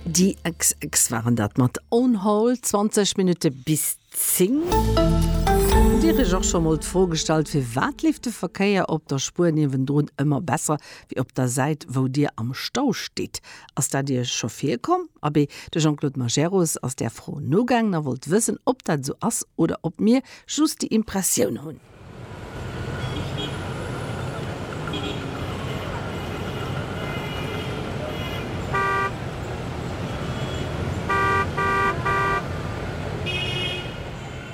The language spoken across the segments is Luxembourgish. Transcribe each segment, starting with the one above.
Déi xx waren dat mat On Hold, 20 Minutte bis 10. Hutt Dir Iech och scho mol d'Fro gestallt, firwat leeft de Verkéier op der Spuer niewendrun ëmmer besser wéi op der Säit, wou Dir am Stau stitt? Ass dat Iech scho virkomm? Abee, de Jean-Claude Majerus ass där Fro nogaangen a wollt wëssen, ob dat esou ass oder ob mir just déi Impressioun hunn.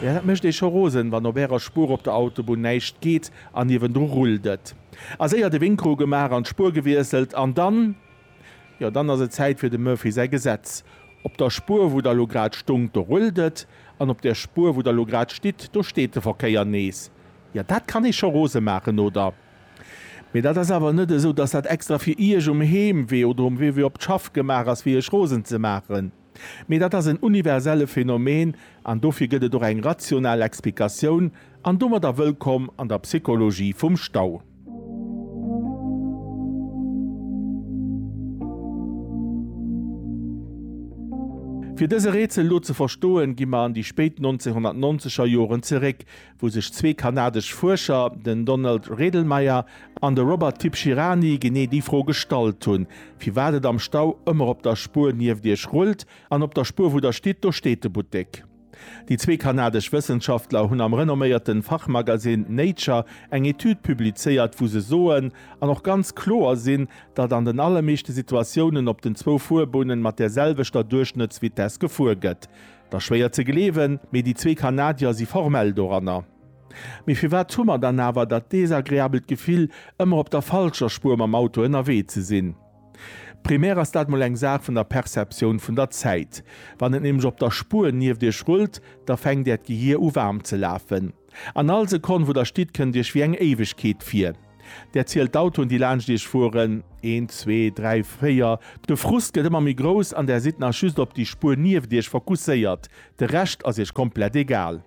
Jo, dat mécht ee scho rosen, wann op Ärer Spuer op der Autobunn näischt geet an niewendru rullt et. A séier de Wink ru gemaach an d'Spuer gewiesselt an dann. Jo, dann ass et Zäit fir dem Murphy säi Gesetz. Op der Spuer, wou Der elo grad stongt, do rullt et, an op der Spuer, wou Der elo grad stitt, do steet de Verkéier nees. Jo, dat kann ee scho rose maachen, oder? Mee dat ass awer net esou, dass dat extra fir Iech um Heemwee oder um Wee, wou ee op d'Schaff gemaach ass, fir Iech rosen ze maachen. Mee dat ass en universelle Phänomen an dofir gëtt et och eng rational Explikatioun, an domadder wëllkomm an der Psychologie vum Stau. Fir dëse Rätsel elo ze verstoen, gi mer an déi spéit 1990er Joren zeréck, wou sech zwee kanadesch Fuerscher, den Donald Redlmayer an de Robert Tibshirani, genee déi Fro gestallt hunn, firwat et am Stau ëmmer op der Spuer nieft Iech rullt, an op der Spuer, wou Der stitt, do steet de Buttek. Déi zwee kanadesch Wëssenschaftler hunn am renomméierte Fachmagasinn Nature eng Etüd publizéiert, wou se soen, an och ganz kloer sinn, datt an den allermeeschte Situatiounen op den zwou Fuerbunne mat där selwechter Duerchschnëttsvitess gefuer gëtt. Da schwéier ze gleewen, mee déi zwee Kanadier si formell doranner. Mee firwat hu mer dann awer dat desagreabelt Gefill, ëmmer op der falscher Spuer mam Auto ënnerwee ze sinn? Primär ass dat mol eng Saach vun der Perceptioun vun der Zäit. Wann et nämlech op der Spuer nieft iech rullt, da fänkt äert Gehier u waarm ze lafen. An all Sekonn, wou der stitt, kënnt iech wéi eng Éiwegkeet vir. Der zielt d'Autoen, déi laanscht iech fueren, een, zwee, dräi, véier. De Frust gëtt ëmmer méi grouss an der sidd nach just op déi Spuer nieft iech fokusséiert. De Rescht ass iech komplett egal.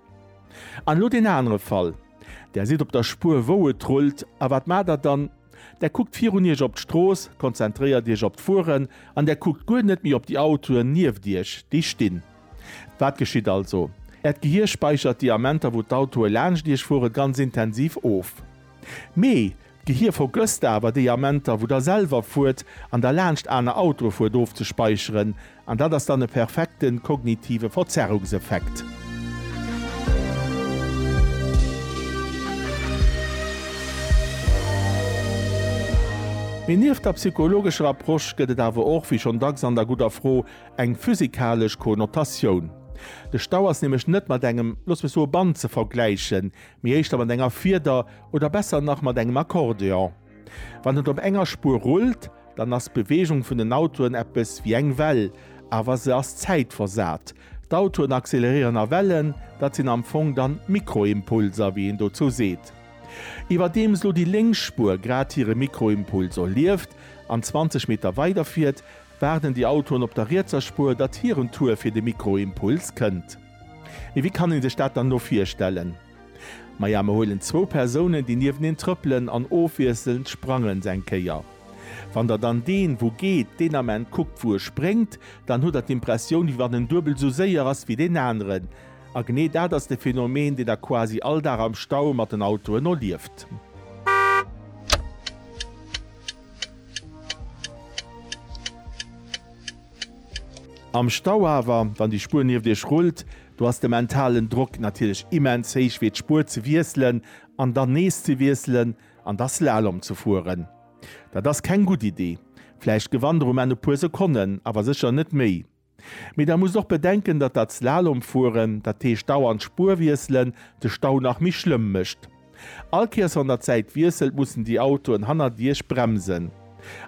An elo deen anere Fall. Der sidd op der Spuer, wou et rullt. A wat maacht der dann? Der kuckt virun iech op d'Strooss, konzentréiert iech op d'Fueren an der kuckt guer net méi op déi Autoen nieft iech, déi stinn. Wat geschitt also? Äert Gehir späichert déi Amenter wou d'Autoe laanscht Iech fueren ganz intensiv of. Mee d'Gehir vergësst awer déi Amenter wou der selwer fuert an der laanscht aner Autoe fuert ofzespäicheren an dat ass dann e perfekte kognitive Verzerrungseffekt. Mee nieft der psychologescher Approche gëtt et awer och, wéi schonn dacks an der gudder Fro, Eng physikalesch Konnotatioun. De Stau ass nämlech net mat engem, looss mech soe Band ze vergläichen, mee éischter mat enger Fieder oder besser nach mat engem Akkordeon. Wann et op enger Spuer rullt, dann ass d'Beweegung vun den Autoen eppes wéi eng Well, awer se ass zäitversat. D'Autoen acceleréieren a Wellen, dat sinn am Fong dann Mikroimpulser, wéi een dozou seet. Iwwerdeems lo déi lénks Spuer grad hire Mikroimpuls erlieft an 20 Meter weiderfiert, Waarden déi Autoen op der rietser Spuer, datt hiren Tour fir de Mikroimpuls kënnt? Mee wéi kann ee sech dat dann elo virstellen? Maja, mer huelen zwou Persounen, déi nieweneen trëppelen an ofwiesselnd sprangen se eng Kéier. Wann der dann deen, wou geet, deen Ament kuckt, wou e spréngt, dann hutt der d'Impressioun, wéi wann en duebel esou séier ass wéi deen aneren. A genee dat ass de Phenomen, deen der quasi all Dag am Stau mat den Autoen erlieft. Am Stau awer, wann déi Spuer nieft iech rullt, do ass de mentalen Drock natierlech immens héich fir d'Spuer ze wiesselen an dann nees ze wiesselen an da Slalom ze fueren. Dat ass keng gutt Idee. Vläicht gewannt der um Enn e puer Sekonnen, awer sécher net méi. Mee da musst och bedenken, datt dat Slalomfueren, dat heescht dauernd Spuer wiesselen, de Stau nach méi schlëmm mécht. All Kéiers wann der d'Säit wiesselt, mussen déi Autoen hannert Iech bremsen.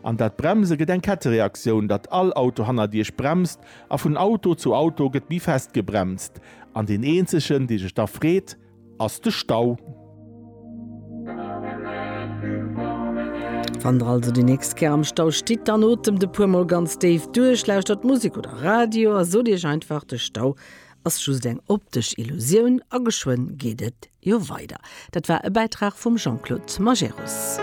An dat Bremse gëtt eng Kettereaktioun, datt all Auto hannert Iech bremst a vun Auto zu Auto gëtt méi fest gebremst. An deen eenzegen, dee sech da freet, ass de Stau. Wann der also déi nächst Kéier am Stau stitt, dann otemt e puer mol ganz déif duerch, lauschtert Musek oder Radio a sot iech einfach, de Stau ass just eng optesch Illusioun a geschwënn geet et jo weider. Dat war e Bäitrag vum Jean-Claude Majerus.